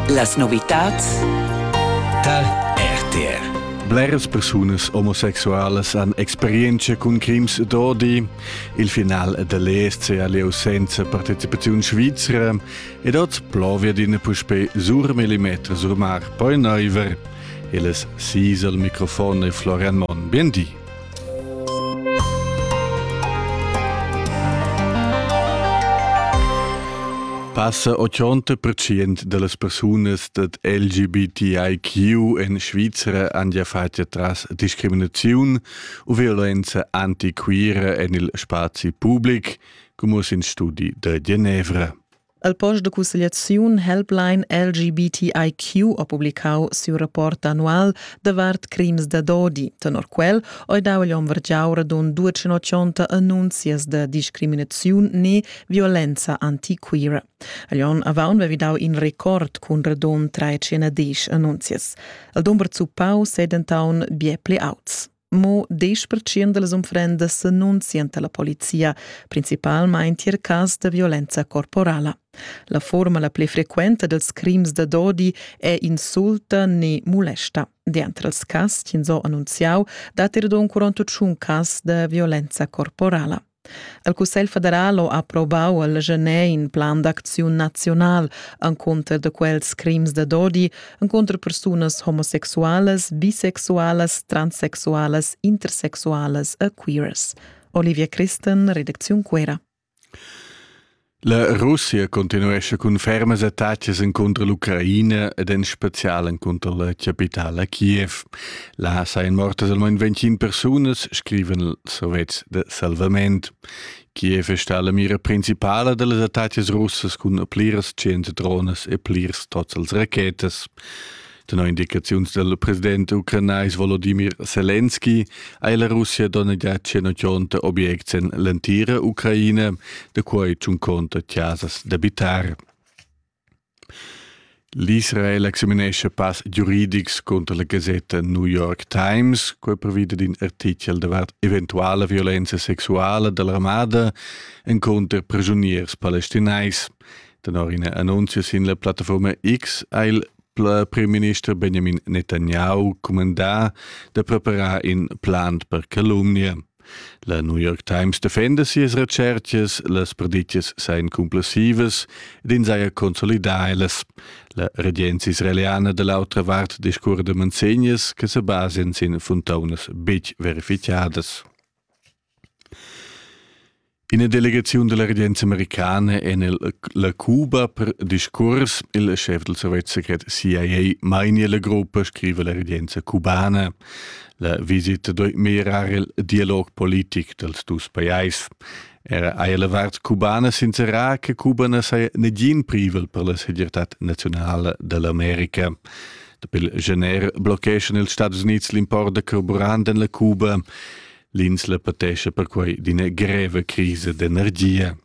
Las novitads tal RTR Bleras persunas omosexualas han experienza cun crims d'odi. Il final dell'ESC ha lieu senza partecipaziun svizra ed oz plovia d'ina puspè sur millimeter sur mar poi neiver. Il es sis al microfon e Florian Monn. Bien di. Passa 80 percent dallas persunas dad LGBTIQ en Svizra han ja fatg tras discriminaziun u violenza antiquira en il spazi public, come in studi da Genevra. El post de cussegliaziun Helpline LGBTIQ ha publicau siu rapport annual davart crims da dodi. Tenor quel ei dau agl hom vargiau radund 280 annunzias da discriminaziun ne violenza antiquira. Agl onn avaun vevi dau in record cun radund 310 annunzias. El dumber zuppau sedentaun bie pli auts. Mo 10% dals unfrendas annunzian la polizia, principalmain tier cas da violenza corporala. La forma la pli frequenta dels crims da dodi è insulta ne molesta. Dentro els cas, ins ho annunziau, dat er d'un 41 cas da violenza corporala. El Cussegl federal ha approvau al Genet in plan d'acziun naziunal encunter da quels crims da dodi encunter persunas homosexualas, bisexualas, transsexualas, intersexualas e queers. Olivia Christen, Redakziun Cuera. La Russia continuescha cun fermas attacas encunter l'Ucraina ed en special encunter la capitala Kiev. Là sajan mortas almain 25 persunas, scriven els sovets de salvament. Kiev è stata la mira principale delle attacche russe con pliras 100 drones e plirs tots als rachetas. Tenor indicaziuns del president ucranais Volodymyr Zelensky ha la Russia donnegià 180 obiects en l'entira Ucraina, da quai tschun conta chasas d'abitar. L'Israel examinesce pass giuridics contro la gasetta New York Times, quai previda d'in artichel davart eventuala violenza sexuala dell'armada en contro prigioniers palestinais. Tenor ina annunzia sin la plattaforma X ha il premierminister Benjamin Netanyahu cumandà da preparar in plan per calumnia. La New York Times defenda sias recercas, las predicas sain cumplessivas ed ins haja consolidà elas. La regenza israeliana da l'autra vart discurre de manzegnas che se basen sin funtaunas betg verificadas. Ina delegaziun dalla regenza americana en il, la Cuba per discurs. Il schef del Sovjetsekret CIA mania la gruppa, scrive la regenza cubana. La visita doi mirar il dialog politic dels dus pajais. Era hai la vart cubana sincerà che Cuba na sei negin privel per la segirtad nazionale dell'America. Dapi il gener blocheschan ils Stati Uniti l'import da carburant en la Cuba. L'insla patescha perquai d'ina greva crisa d'energia.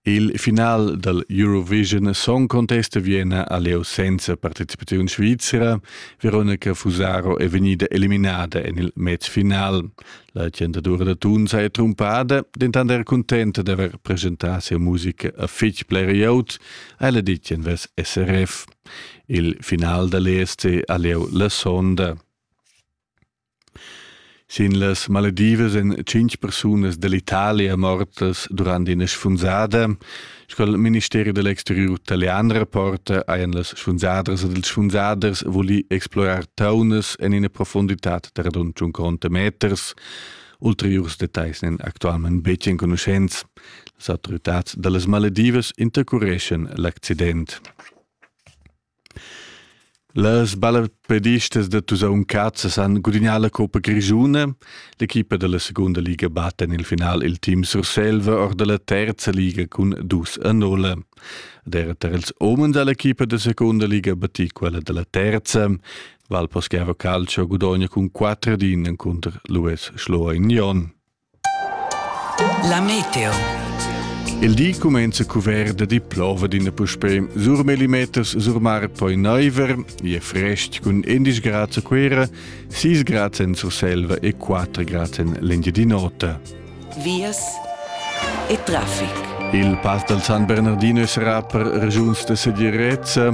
Il final dal Eurovision Song Contest a Vienna ha lieu senza participaziun svizra. Veronica Fusaro è vegnida eliminada en il match final. La tgentadura da Tunza è trumpada, dentant era cuntenta d'avair presentà sia musica a fitg bler glieud, ella ditg envers SRF. Il final da l'ESC ha lieu la sonda. Sin las maledivas èn tschintg persunas dall'Italia mortas durant ina sfunzada. Sco il ministeri da l'exteriur italian rapporta, hajan las sfunzadras ed ils sfunzaders vulì explorar taunas en ina profunditad da radund tschunconta meters. Ulteriurs detagls n'èn actualmain betg enconuschents. Las autoritads da las maledivas intercureschan l'accident. Las ballapedistas da Tusaun Cazas han gudignà la coppa grischuna. L'equipa da la segunda liga batta en il final il team Surselva or da la terza liga cun dus a nulla. Ed era tar ils umens ha l'equipa da segunda liga battì quella da la terza. Valposchiavo Calcio gudogna cun 4 din encunter l'US Schloa Union. La meteo. Il di cumenza cuvert da di plova d'ina puspè. Sur millimeters sur mar poi naiver, e frest cun 11 grads a Cuera, 6 grads en Surselva e 4 grads en l'Engiadin'Ota. Vias e traffic. Il pass dal San Bernardino sarà per regiuns da segirezza.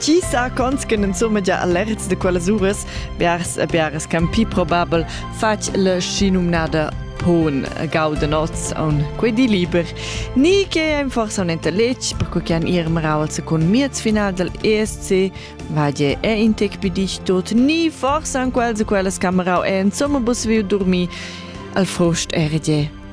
Ti sa cons che insumma allerts de quellas uras, biars e biars can pi probabel, fatg la schinumnada pon gauden oz on quei di liber. Ni che ein forse un intelletg, per quei che han ir marau al secund miez final del ESC, vadie e intec pidic tot, ni forse an quels e quellas camerau e insomma bus viu dormi, al frost erdie